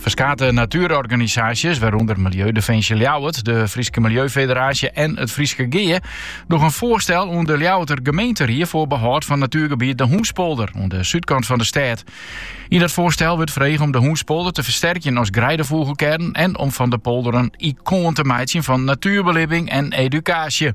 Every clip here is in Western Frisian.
Ferskate natuerorganisaasjes, wêrûnder Milieudefensje Ljouwert, de Fryske Milieufederaasje en it Fryske Gea, dogge in foarstel oan de Ljouwerter gemeenteried foar behâld fan natuergebiet De Hûnspolder oan de súdkant fan de stêd. Yn dat foarstel wurdt frege om De Hûnspolder te fersterkjen as greidefûgelkearn en om fan de polder in ikoan te meitsjen fan natuerbelibbing en edukaasje.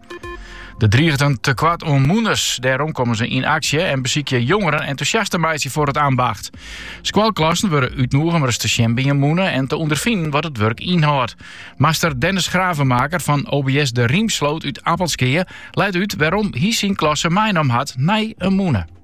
Der driget in tekoart oan mûners. Dêrom komme se yn aksje en besykje jongeren entûsjast te meitsjen foar it ambacht. Skoalklassen wurde útnûge om ris te sjen by in mûne en te ûnderfinen wat it wurk ynhâldt. Master Dennis Gravemaker fan OBS De Riemsloot út Appelskea leit út wêrom hy syn klasse meinommen hat nei in mûne.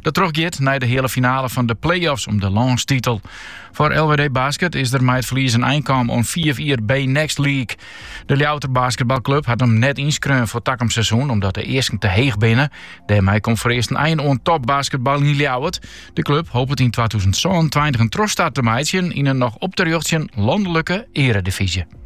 Dat trochgiet nei de heale finale fan de play-offs om de lânstitel. Foar LWD Basket is der mei it ferlies in ein kaam oan fiif jier BNXT League. De Ljouwerter basketbalklup hat him net ynskreaun foar takom seizoen omdat de easken te heech binne. Dêrmei komt foarearst in ein oan topbasketbal yn Ljouwert. De klup hopet yn twatûzen sânentweintich in trochstart te meitsjen yn in noch op te rjochtsjen landelike earedivyzje.